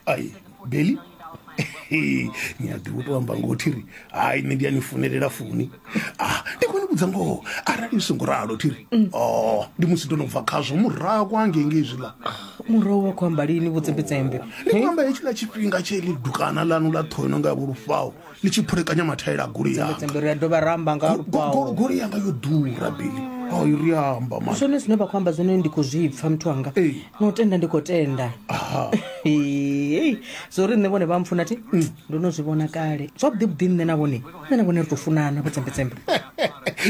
ai beli ni a ḓivha u tou amba ngoho thiri hai nṋe ndi a ni funelela funi ah ndi khou ni vhudza ngoho arali ni songo ralo thiri o ndi musi ndo no bva khazwo murahu kwa ngengei zwiḽa murahu wa khou amba lini vhutsembetsembe ndi khou amba hetshiḽa tshifhinga tshe ḽi dukana ḽanu ḽa ṱhono nga vhulufhao ni tshi phulekanya mathaela a goloi yanga ri a dovha ra amba nga lukwao goloi yanga yo ḓura bili o i ri amba ma zwone zwine vha khou amba zwone ndi khou zwi pfa muthu wanga Ee. no tenda ndi khou tenda Aha. Hey, zwo ri nṋe vhone vha mpfuna thi ndo no zwi vhona kale zwavhuḓi vhuḓi nṋe na vhone nṋe na vhone ri tou funana vho tsembetsembe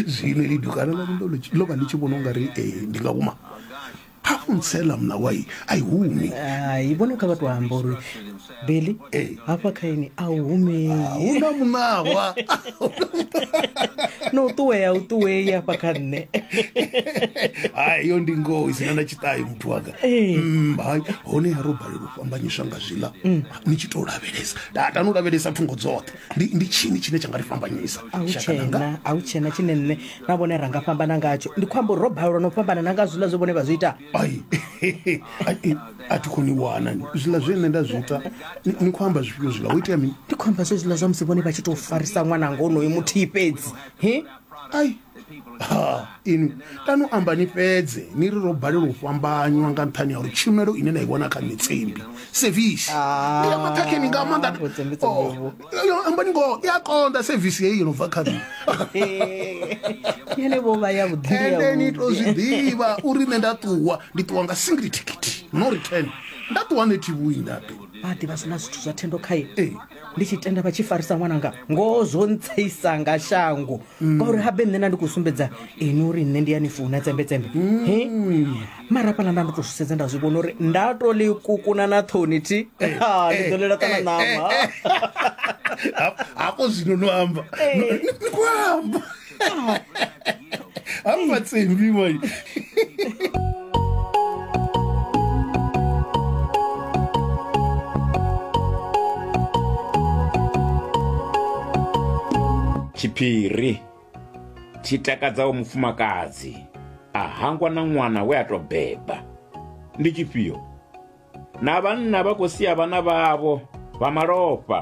zwino lidukana ḽa ndo lo vha ndi tshi vhona u nga ri eh, ndi nga uma kha u ntsela mna wai a i humi hai vhone kha vha tou amba uri beli Ee. hafha kha ini a u humei hu na muṋawa no u ṱuwea u ṱuwei hafha kha nṋe hai yo ndi ngoho isina na tshiṱayo muthu wanga Ee. Mm, hai hone ya ro balelwa u fhambanyiswa nga zwiḽa ni tshi tou lavhelesa tatani u lavhelesa thungo dzoṱhe ndi, ndi tshini tshine tsha nga ri fhambanyisa a hu Shaka langa? tshena a hu tshena tshine nṋe na vhone ra nga fhambana ngatsho ndi khou amba uri ro balelwa no fhambana na nga zwiḽa zwe vhone vha zwi ita ai ai, a thi khou ni wana zwiḽa zwe nṋe nda zwi ita ni- ni khou amba zwifhio zwiḽa ho itea mini ndi khou amba zwezwiḽa zwa musi vhone vha tshi tou farisa ṅwananga onoyo muthihi fhedzi he ai ha inwi kani u amba ni fhedze ni ri ro balelwa u fhambanywa nga nṱhani ya uri tshumelo ine na i vhona kha mitsembi sevisi Ah, ya maṱhakheni nga maanḓa ni khou tsembedza Oh, Mudzimu. yo- yo, ambani ngoho i a konḓa sevisi heyi yo no bva kha nṋe yene vho vha yavhuḓi ende ni to zwi ḓivha uri nṋe nda ṱuwa ndi ṱuwa nga single ticket no return nda ṱuwa nṋe thivhuindape vha ḓivha sina zwithu zwa thendo khaye ee ndi tshi tenda vha tshi farisa ṅwananga ngoho zwo ntseisa nga shango ngauri habe nṋe na ndi khou sumbedza ini uri nṋe ndi ya ni funa tsembetsembe he mara hafhaḽa nda ndo tou zwi sedza nda zwi vhona uri nda to ḽi kukuna na ṱhoni thi Ha, ndi ḓo ḽela kana ṋama hafho zwino no amba No- ni- ni khou amba I'm not saying we were. tshiphiri tshi takadzaho mufumakadzi a hangwa na ṅwana we a tou beba ndi tshifhio na vhanna vha khou sia vhana vhavho vha malofha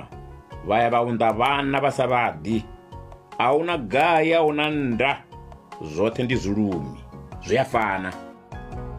vha ya vha unḓa vhana vha sa vhaḓi a hu na gai a hu na nda zwoṱhe ndi zwilumi zwi a fana